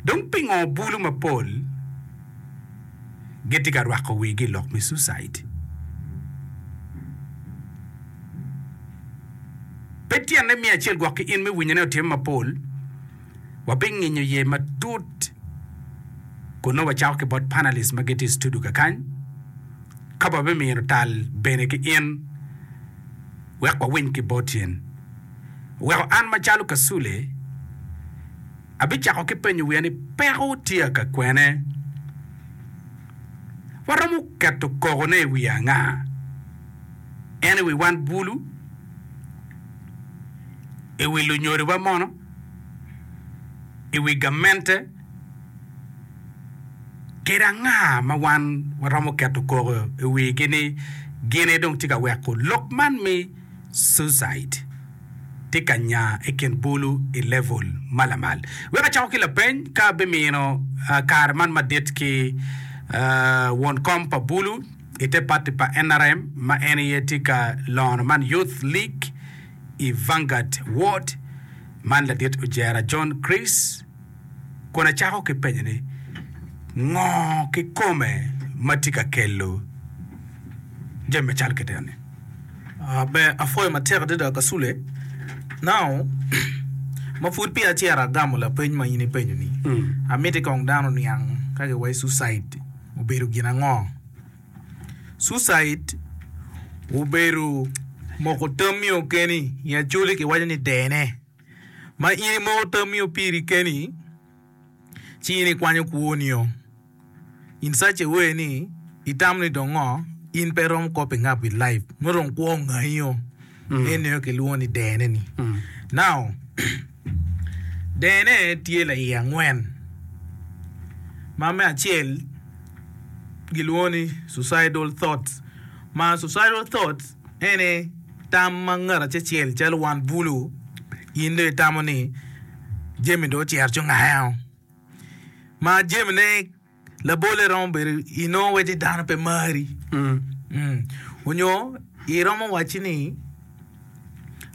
Dong pingo bulu mapol gitye ka rwako wigi i lok me suicide? Pe tyene miyo acel gwok ki in me winyone otimme mapol. Wabinginyo iye matut kun nongo wacako ki bot panelists ma gitye i studio kakany, ka wabimino tal bene ki in. wek wawiny ki bot yen. Oweko an macalo Kasule abicako ki penyo wiya ni peko tye aka kwene? Waromo keto koko ne i wi anga? En i wi wan bulu? I wi lunyodi wa mono? I wi gamente? kede anga ma wan waromo keto koko i wigi ni gine dong tye ka weko lok man me suicide tye ka nya i kin bulu i level ma lamal? Wek acako ki lapeny, ka abimino kare man madit ki won kom pa bulu i te pati pa nrm ma en aye tye ka lono man Youth League i Vanguard Ward man ladit ojera John Chris kun acako ki penye ni, Ngo kikome ma tye ka kelo jami macalo kit eni? Be apwoyo matek adada Kasule nao ma pud peya cito agamo lapeny ma in ipenyo ni, Amiti kong dano oniang ka giwaci suicide obedo gin ango? Suicide obedo moko tammi okeni i Acholi kiwaco ni dene. Ma in imoko tamio piri keni, ci in ikwanyo kwonio in such a way ni itamo ni dong ngo in pe iromo kop i ngap with life nongo dong kwo ongayio. Nen nio kilwongo ni dene ni. Now dene tye laye angwen ma me acel gilwongo ni suicidal thoughts ma suicidal thoughts Eni tam ma ngat acecel calo wan bulu. In dong itamo ni jami dong ocito ci ongao. Ma jami ne labolle romo bedo inongo waci dano pe mari. Onyo iromo waci ni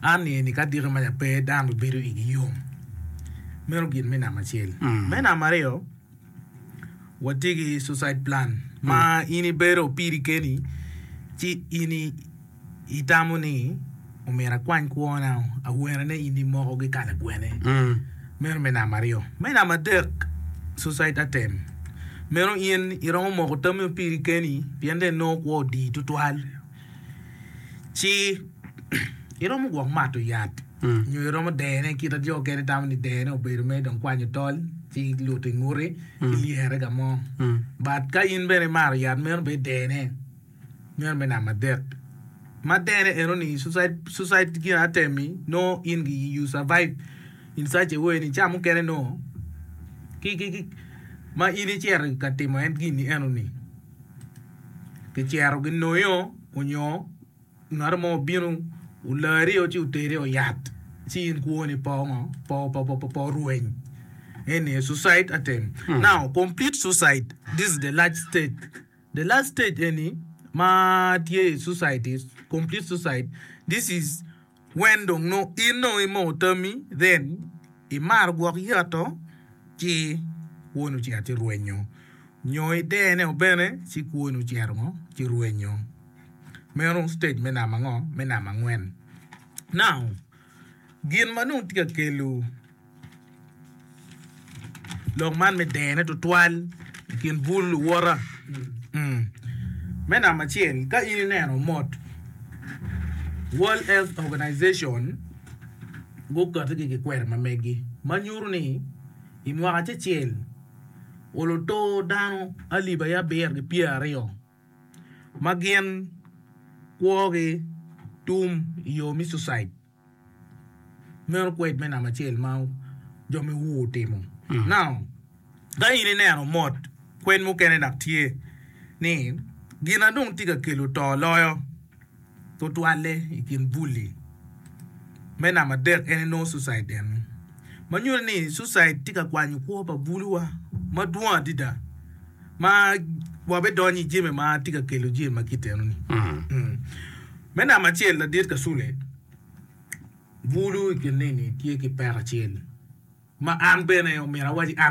an ni eni ka adiki maca pe dano bi bedo igi yom. Meno gin me namba acel. Me namba aryo. Watye ki suicide plan ma in ibedo piri keni ci in itamo ni omyero akwany kwona awene ni in imoko ki kala gwene meno me namba aryo me namba adek suicide atem meno in iromo moko tami piri keni pien dong inongo kwo odi tutwal. Ci, iromo gwok mato yat nyo iromo dene kite jo okene tamo ni dene obedo mere dong kwanyo tol ci luto i ngute ci lyere ka mo. But ka in bene imato yat meno bene dene meno me namba adek. Ma dene eno ni suicide suicide gin atemi no in gi you survive in such a way ni ca mukene no ki ki ki ma in icito ka timo en gini eno ni Kicero ginoyo onyo ngat mo obino olari ci oteri i oyat ci in kwo ni po ngo po rweny eni aye sucide atem now complete sucide this is the last stage the last stage eni ma tye i sucide is complete sucide this is When dong no in no imoo tammi then imaro gwok yato ci kwoni ocito ci rwenyo nyo itene o bene ci kwoni ocito ngo ci rwenyo meno stage me namba ngo me namba angwen now gin ma nongo tye ka kelo Lok man me dene tutwal i kin bul luwota. Me namba acel, ka in ineno mot World Health Organization guketo ki kikweri ma megi ma nyuto ni i mwaka acecel oluto dano alip aye abiro ki pyera aryo ma gin kwogi tum i yo me cucid. Meno kwed me namba acel ma jo me Ur otimo. Now, ka in ineno mot kwed mukene dok tye ni gin ma dong tye ka kelo to loyo tutwalle i kin bulli me namba adek en nongo sucide eno, ma nyuto ni sucide tye ka kwanyo kwo pa buluwa madwong adada. ma wabidonyo i jami ma tye ka kelo jami ma kitenoni. Me namba acel, ladit Kasule bulu i kin neni tye ki peko acel ma an bene omyero awaci an